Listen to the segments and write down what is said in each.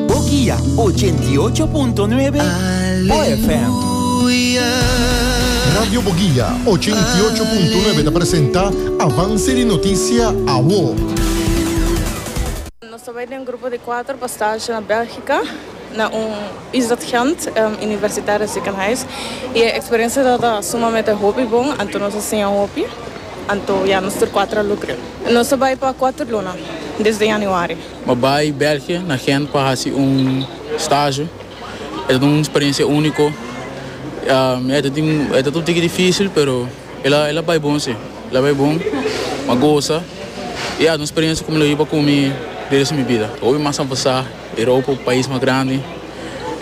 Bo guia ochenta i ocho punto nuebe Bo FM. Radio Bo Guia ochenta i ocho punto nuebe ta presenta Avance di Noticia Awo. Nos ta bai den grupo di kuater pa stage na Belgika, na un Islet Gent universitario ziekenhuis. I e experiencia tabata sumamente hopi bon, anto nos a siña hopi, anto ya nos tur kuater a lukre. Nos ta bai pa kuater luna, desde Januari. Mi bai België na Gent pa haci un stage. E ta un experiencia unico. E ta tin, e ta ta un tiki dificil, pero e la, e la bai bon si. E la bai bon. M'a goza. I ya ta un experiencia cu mi lo hiba cu mi di res di mi bida. Hopi mas a pasa. Europa un pais mas grandi.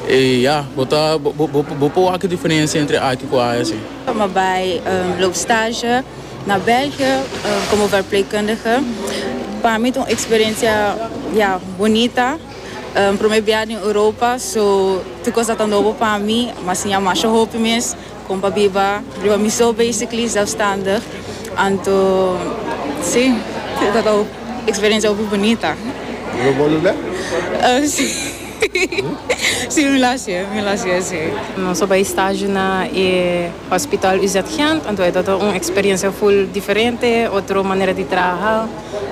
I ya, bo ta, bo, bo, bo por wak e diferencia entre aki cu aya si. Mi bai loop stage. Na België komo verpleegkundige pa mi ta un eksperensia ya bonita. Promé biaha den Europa so tur kos tabata nobo pa mi, mi a siña masha hopi mes kon pa biba riba mi so basically zelfstandig. Anto si tabata un eksperensia hopi bonita. Lo bo lo be? Si. Si mi lo hacié, mi lo hacié si. Nos a bai stage na e hospital UZ Gent, anto e tabata un experiencia full diferente, otro manera di traha,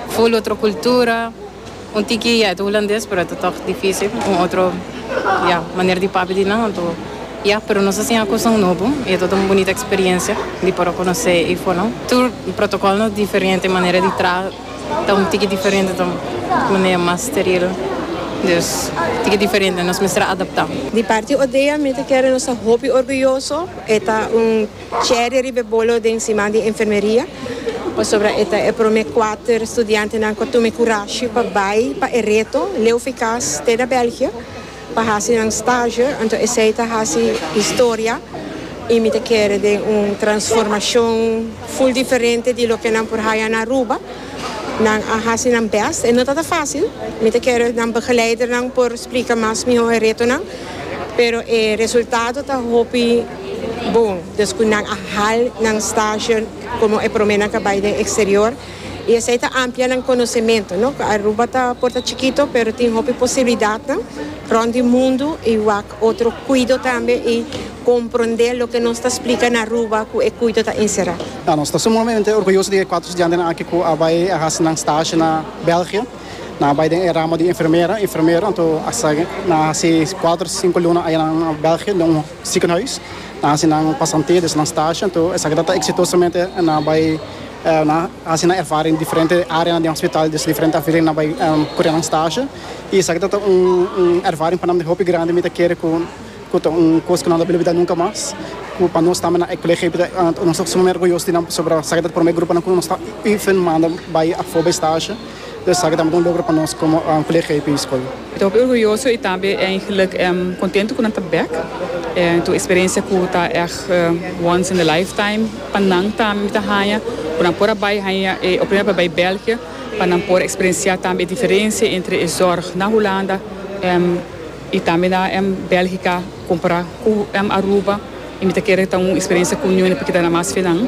full otro cultura, un tiki ya e ta Hulandes pero e ta tog dificil, un otro ya manera di papia di nan, anto ya, pero nos a siña cosnan nobo y e tabata un bunita experiencia di por a conoce Ifonan. Tur protocol nos diferente, manera di traha. Ta un tiki diferente ta un manera mas steril dus tiki diferente nos mester a adapta. Di parti Odea mi ta kere nos ta hopi orguyoso e ta un cherry riba e bolo den siman di enfermeria pasobra e ta e prome kuater studiantenan ku a tuma e kurashi pa bai pa e reto leu fikas te na Belgia. Pa hasi nan stage, anto esei ta hasi historia y mi ta kere den un transformacion full diferente di loke nan por haya na Aruba. Nan a hasi nan best, e no ta ta facil, mi ta kere nan begeleidernan por splica mas miho e retonan, pero e resultado ta hopi bon descu nan a hal nan stage como e prome nan ta bay den exterior. y esey ta amplia nan conocementu, no? Aruba ta por ta chikito pero tin hopi posibilidadnan rond di mundu y wak otro cuido tambe y comprende loke nos ta splica na Aruba cu e cuido ta encerra. Ya, nos ta sumamente orguyoso di e cuatro studiantenan aki cu a bay a haci nan stage na België. Nan a bay den e ramo di enfermera, enfermero, anto hasta nan a haci cuatro, cinco luna aya nan na België den un ziekenhuis. Nan a haci nan pasantia, dus nan stage, anto esaki ta ta exitosamente nan a bay. Nan a hasi nan ervaring diferente áreanan den hospital, dus diferente afdeling nan bai kura nan stasje i esaki ta ta un ervaring pa nan di hopi grandi. Mi ta kere ku ta un kos ku nan no a bilibidá nunka mas, ku pa nos tambe nan e kolegio ei ta nos ta sumamente orguyoso di nan pasobra esaki ta primer gruponan ku nos ta even manda bai afó bai stasje. Esaki tambe ta un logro pa nos komo VLGP Skol. Mi ta hopi orguyoso i tambe eigenlijk kontentu ku nan ta bek. It un eksperensia ku ta ègt once in a lifetime pa nan tambe. Mi ta haña ku nan por a bai haña e oportunidad pa bai Bèlgia pa nan por eksperensiá tambe e diferensia entre e zòrg na Hulanda. I tambe na em Belgica compara cu em Aruba y mi ta kere ta un experiencia cu ñuene por kita na mas fenan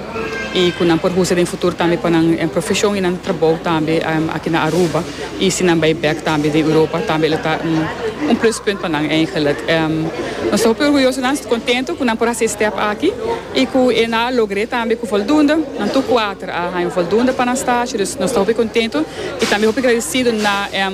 y cu nan por usa den futuro tambe pa nan profesion y nan trabou tambe aki na Aruba y si nan bay bek tambe den Europa tambe lo ta un plus punt pa nan eigenlijk. Nos ta hopi orguyoso nan contento cu nan por haci e step aki y cu e nan a logr'e tambe cu voldoende, nan tur cuater a haña voldoende pa nan stage, dus nos ta hopi contento y tambe hopi gradecido na em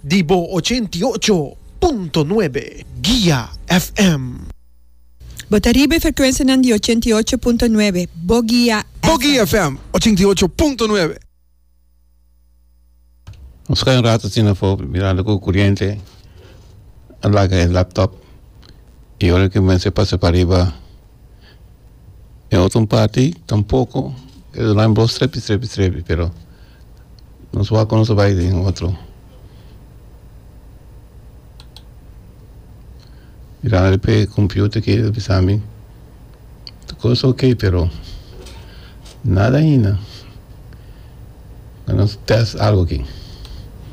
Di bo ochenta i ocho punto nuebe Guia FM. Bo ta riba e frekuensianan di ochenta i ocho punto nuebe Bo Guia FM. Bo Guia FM ochenta i ocho punto nuebe. Nos ka un rato asina afo mirando ku kuriente a laga e laptop i ora ku mester pasa pariba. den otro parti tampoco e lo bai strepi strepi strepi pero nos wak nos a bai den otro mirando riba e computer aki ta bisa mi tur cos ta ok pero nada ahinda nos test algo aki.